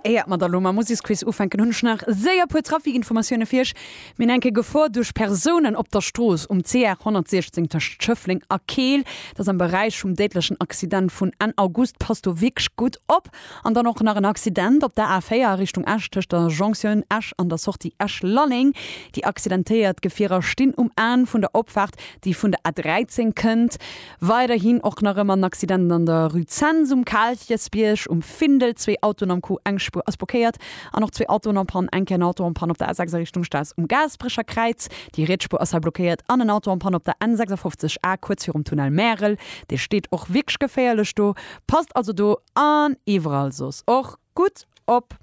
Éiert mer da lo mam Museksquiz ufänken, hunn ech nach séier puer Trafikinformatioune fir iech. Mir enke Gefor duerch Persounen op der Strooss um CR 116 tëscht Schëffleng a Keel. Dat ass am Beräich vum déidlechen Accident vun Enn August. Passt do wierklech gutt op. An dann och nach en Accident op der A 4 a Richtung Esch tëscht der Jonktioun Esch an der Sortie Esch-Lalleng. Déi accidentéiert Gefierer stinn um Enn vun der Opfaart, déi vun der A 13 kënnt. Weiderhin och nach ëmmer en Accident an der Rue Zens um Kaalchesbierg um Findel. Zwee Autoen am Coup, eng Spuer ass blockéiert an och zwee Autoen en Panne. Enke en Auto en Panne op der A6 a Richtung Staass um Gaasperecherkräiz. Déi riets Spuer ass hei blockéiert an en Auto en Panne op der N56 A kuerz virum Tunnel Märel. Dee steet och wierklech geféierlech do. Passt also do an iwwerall soss och gutt op.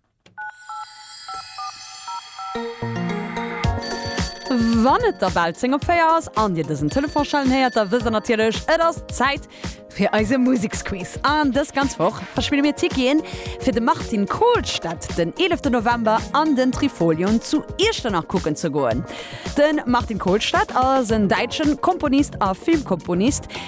Wann et da bal 10 op 4 ass an Dir dësen Telefon schellen héiert, da wësst Der natierlech, et ass Zäit fir eise Museksquiz. An dës ganz Woch verspille mir Ticketen fir de Martin Kohlstedt den 11 November an den Trifolion zu Iechternach kucken ze goen. De Martin Kohlstedt ass en däitsche Komponist a Filmkomponist.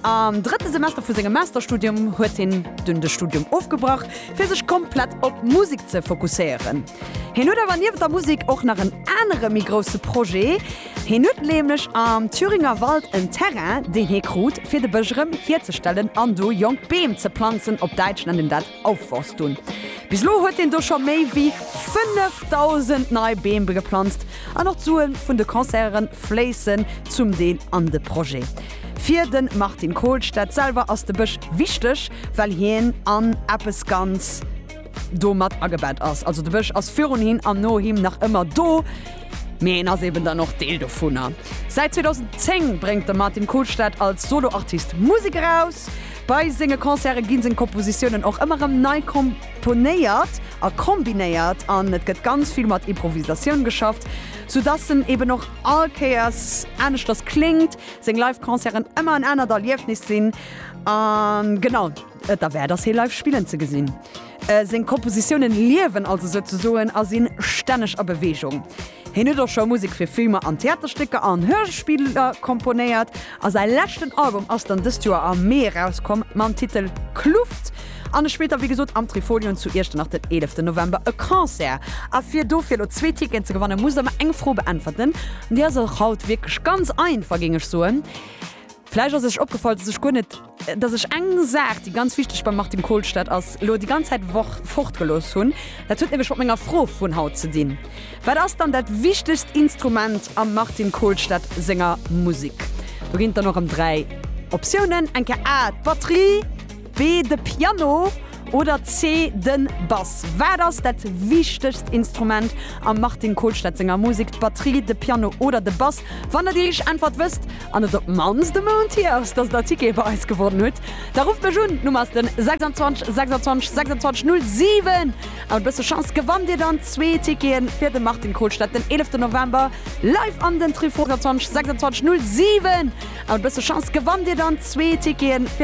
Am drëtte Semester vu sengem Masterstudium huet hien dunn de Studium ofgebrach, fir sech komplett op d'Musek ze fokusséieren. Hien huet awer niewent der Musek och nach en anere méi grousse Projet. Hien huet nämlech am Thüringer Wald en Terrain, deen hie krut, fir de Bësch erëm hierzestellen an do jonk Beem ze planzen, op Däitsch nennt een dat Aufforst hunn. Bis elo huet een do scho méi wéi 5.000 nei Beem geplanzt an och d'Sue vun de Concerten fléissen zum Deel an de Projet. Fir de Martin Kohlstedt selwer ass de Bësch wichteg, well hien an eppes ganz do mat agebett ass. Also de Bësch ass virun him an no him nach ëmmer do, mee hien ass eben dann och Deel dovunner. Säit 2010 bréngt de Martin Kohlstedt als Solo-Artist Musek eraus. Bei senge Concerte gi seng Kompositiounen och ëmmer erëm nei komponéiert a kombinéiert an et gëtt ganz vill mat Improvisatioun geschafft, sou dass en eben och all Kéiers aneschters kléngt, seng Live-Concerten ëmmer en anert Erliefnis sinn a genau et derwäert ass hie live spillen ze gesinn. Seng Kompositiounen liewen also souzesoen a sinn stänneg a Beweegung. Hien huet och scho Musek fir Filmer an Theaterstécker an Hörspiller komponéiert a säi leschten Album ass dann dëst Joer am Mee erauskomm mam Titel Kluft an e spillt da wéi gesot am Trifolion zu Iechternach den 11 November e Concert. A fir dofir elo zwee Ticketen ze gewannen, musst der mer eng Fro beäntwerten, déi ass och haut wierklech ganz einfach, géing ech soen. Vläicht ass lech opgefall, dass ech guer net, dass ech eng Saach, déi ganz wichteg beim Martin Kohlstedt ass, elo déi ganz Zäit ewech fortgelooss hunn. Dat huet nämlech mat menger Fro vun haut ze dinn, Wat ass dann dat wichtegst Instrument am Martin Kohlstedt senger Musek? Do ginn et dann och erëm dräi Optiounen, eng Kéier A, d'Batterie, B, De Piano oder C, Den Bass? Wat ass dat wichtegst Instrument am Martin Kolstad senger Musek, d'Batterie, de Piano oder de Bass? Wann der déi richteg Äntwert wësst, an et op d'mannst e Mount hier ass, dass der Tickete bei eis gewonnen hutt, da rufft mech un. D'Nummer ass den 26 26 26 07. A mat e bësse Chance gewannt dir dann zwee Tickete fir de Martin Kolstad den 11 November live an den Trifon. 26 26 07. A mat e bësse Chance gewannt dir dann zwee Tickete fir.